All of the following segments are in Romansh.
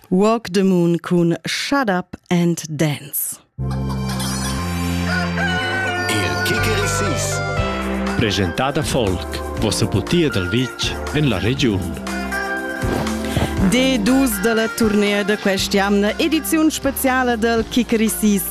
Walk the Moon cun Shut Up and Dance. Il Kikerisis. Presentada folk. Vossa butia dal vitg en la regiun. D2 dalla turnea da quest'jamna ediziun speciala dal Kikerisis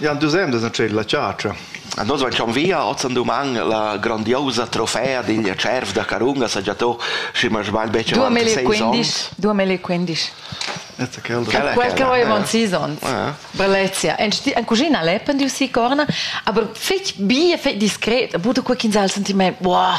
Jan dus emdas en tschel la chatscha. Nus van con via, oz an duman la grandiosa trofea digl cerv da Carunga sa già to, schi ma sbagl betg avanti seis onns. 2015. Quel che avevano sis onns. Brellezia. En cucina lepen di si corna, aber fetg bi e fetg discret, a buta quei quinzal senti me, wow,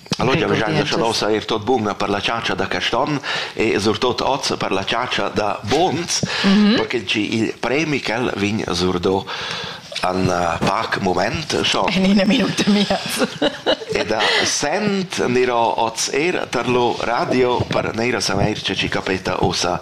Allora avevamo chiesto er tot bun per la ciancia da Caston e surtot oz per la ciancia da Bons, perché il premi quel vin surdo an pac moment schon. En ina minuta mias. E da sent niro oz er per lo radio per neira sameir ce ci capeta osa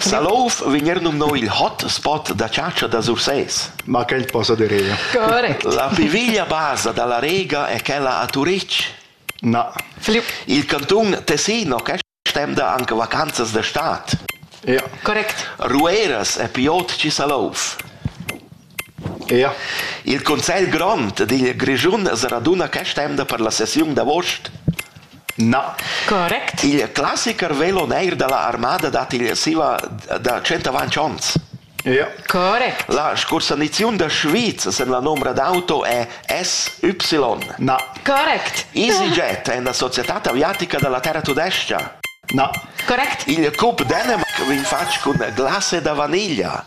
Salouf vegn er numnà il hot spot da chatscha da Sursés. Ma quel possa dir io. Correct. La pli veglia basa da la Rega è quella a Turitg. Na. Il cantun Tessin ha stenda anche vacanzas da stad. Ja. Correct. Rueras è più ot che Salouf. Il cussegl grond digl Grischun raduna questa emda per la sessiun d'avost? Na. Correct. Il classicher velo neir dalla armada dat igl siva da tschentavanch onns. Ja. Correct. La scursaniziun da Schwyz sen la nombra d'auto è SY. Na. Correct. EasyJet è una società aviatica dalla terra tudescia. Na. Correct. Il Cup Dänemark vegn fatg cun glase da vaniglia.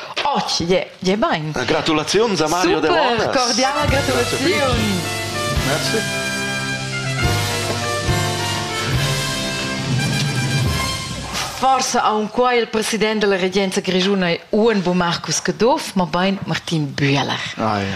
Oh, je, je bain. Eh, gratulaziuns a Mario Super, Delonas. cordiala gratulaziun. Merci. Forsa aun qua il president della regenza grigiuna è Uenbo Marcus Caduff, ma bain Martin Bühler. Ah, ja.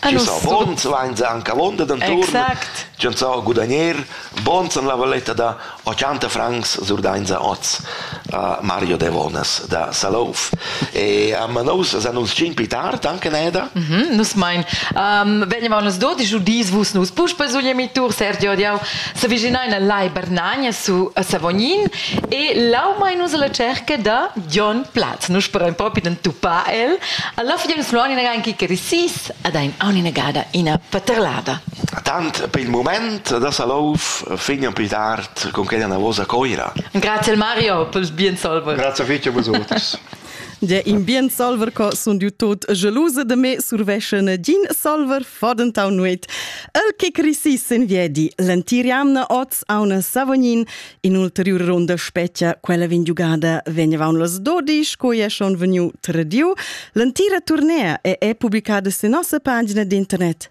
Chis affons vainsa anche avonda d'anturn, ch'han sao gudagner, bons en la valetta da 80 francs surdainsa oz uh, Mario Devonas da Salouf. E um, nus san uns cin pi tard anche neda. Mm -hmm, nus mein. Um, vegnivan nus do, di giudis vus nus puspei sugli emitur Sergio Diau, S'avvicinain al Lai Bernagna su a Savognin e là mai nus alla cerca da Jon Platz. Nus sperain propi d'entupar el. Alla fine nus lo ina anche che risis ad ein una gada ina paterlada. Tant per il moment da Salouf fin un più tard con quella navosa coira. Grazie al Mario per il bien solver. Grazie fitto a vosotros. De in bien salver co sun diu tot gelusa de me surveschen din salver fadentau nuet. El che crisis in viedi l'entiriamna oz a una Savognin in ulterior ronda spettia quella vin giugada vegnevaun las dodisch co è schon veniu tradiu. L'entira tournea è, è pubblicada su nossa pagina d'internet